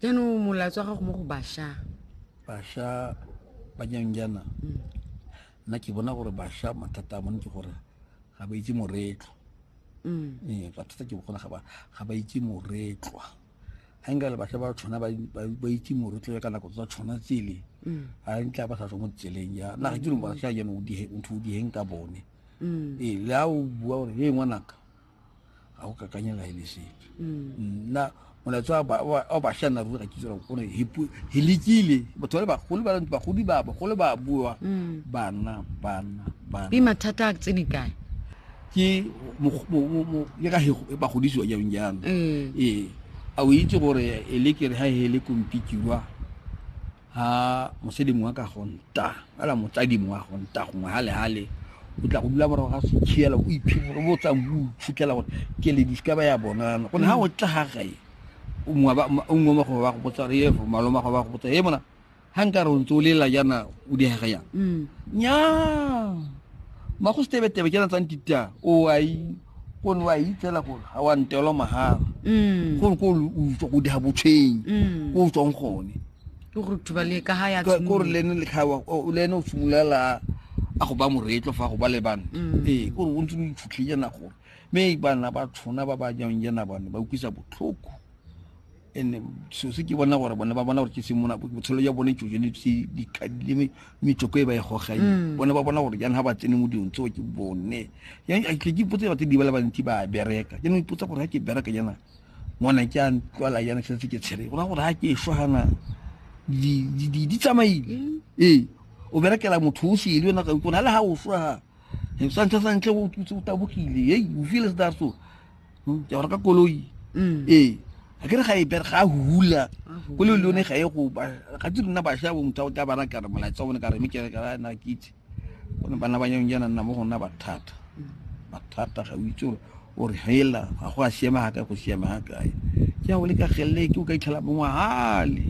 jaanong molaetso wa gago mo go basha basha ba janjana mm. nna ke bona gore basha mathata a bone ke gore ga ba itse moretlwa mm. ee mathata ke bogona ga ba itse moretlwa ga nka le basha ba tshwana ba itse moretlwa ka nako tsa tshwana tsele mm. ga ntla ba sa tswa mo tseleng ya naga ke leng basha jano ntho o diheng ka bone ee le a o bua gore e ngwanaka ga go kakanye la ele sepe mm. nna molaetso wa basha nna ruri ga ke tsela gore he lekile batho ba le bagolo ba bagodi ba bagolo ba bua mm. bana bana bana ke mathata a tsene kae ke le ka bagodisiwa jang jang mm. ee a o itse gore e le kere ga e le kompikirwa ha mosadi mongwe ka go nta ala motsadi mongwe a go nta gongwe halehale o tla go dula morago ga sekhiela o iphitlhela o botsang o iphitlhela gore ke le diska ba ya bonana gone ha o tla ga gae o mongwe mago ba go botsa re efo malo mago ba go botsa e mona ha nka re o ntse o lela jaana o diega jang nnyaa mm. ma go setebetebe ke na tsang tita o a yi ko ne wa yi tsela gore ga wa ntelo mahala mm. gore ko o tswa go diga botshwenyi mm. ko o tswang gone kore lene lekgawa le ene o simolola a go ba moretlo fa go ba le bana mm. ee kore o ntse o itshutlhenya nagone mme bana ba tshona ba ba jang jana bane ba utlwisa botlhoko and so se ke bona gore bone ba bona gore ke se mona botshelo ya bone jojo le tse dikadile metsoko e ba e gogang mm. bone ba bona gore jang ha ba tsene mo dilong tseo ke bone yang a ke ipotsa batho di bala bantsi ba bereka jaanong ipotsa gore ha ke bereka jana ngwana ke a ntlwala jana ke setse ke tshele gona gore ha ke e shwa gana di tsamaile mm. ee o berekela motho o sele yona ka ikona le ha o shwa ga santlha santlha o tabogile ei o feel se that so hmm, ke go reka koloi mm. ee a ke re ga e bere ga a hula ko le lone ga e go ba ga tse rona ba sha bo motho o tla ba raka re molaetsa one ka re mekere ka ra na kitse go ne bana ba nyang jana nna mo gona ba thata ba thata ga o itse gore o re hela ga go a siama ga ka go siama ga kae ke a o le ka gelele ke o ka itlhela bongwe hale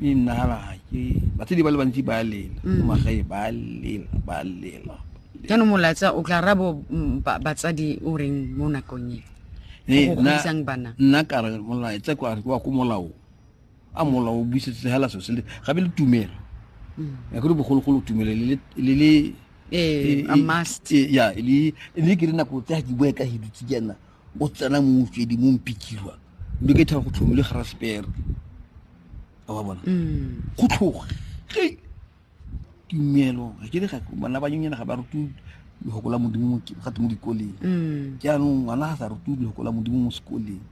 e nna ga ke ba tse di ba le bantsi ba lela mm. magae ba lela ba lela jaanong molaetsa o tla rabo mm, ba- batsadi o reng mo nakong e Ne, go nna- godisang bana nna ka re molaetsa kwa re wa ko molao a molao o busetse hela so se le gabe le tumelo ya kore bogologolo tumelo le le- le le ee e- a e- must e- ya e le e le ke re nako tsa di boe ka hidutse jana o tsena mo mofedi mo mpikirwa mme ke thaba go tlhomile garasepere a wa bona Mm. go tlhoge tumelo ga ke le ga bana ba nyenyana ga ba rutiwe lefoko la modimo gate mo dikoleng mm. jaanong ngwana ga sa rutiwe lefoko la modimo mo sekoleng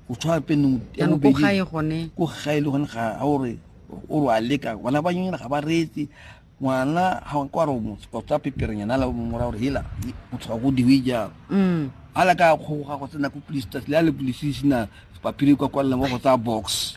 go tshwana peneng ko gae gone ko gae le gone ga a ore o re a leka ngwana ba nyenyana ga ba reetse ngwana ga ko a re motsa peperenyana la mora gore hela motshoga go diwe jalo mm. a la ka kgoga go tsena ko police le a le police sena paphiri kwa kwalelang wa go tsaya box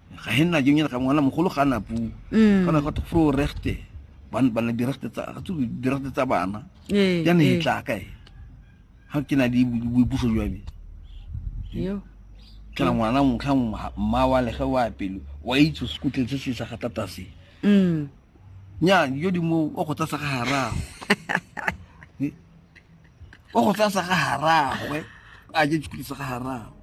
ga e nna jeng ene ga ngwana mogolo ga na puo mm. kana go fro rechte ban ban di rechte tsa ga tsu di rechte tsa bana ee, ya ne e ee. tla ka e ha ke na di boipuso jwa me yo kana ngwana mo kha mma wa le ga wa pelo wa itse se kutle se se sa ga tata se mm nya yo di mo o go tsa sa ga hara wa go tla sa ga haragwe a je dikhuti sa ga haragwe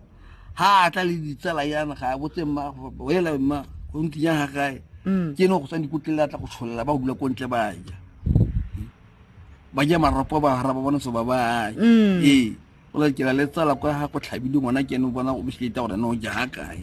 ha a tla le ditsala yana ga a botse mma ela mma go ntinya ga gae mm. ke ne go tsang dikotlela a tla go tsholela ba dula ko ntle ba ja ba ja maropo ba hara ba bona so ba ba mm. ee o la ke la le tsala kwa ha go tlhabile ngwana ke ne bona o bisleta gore ne o ja ga kae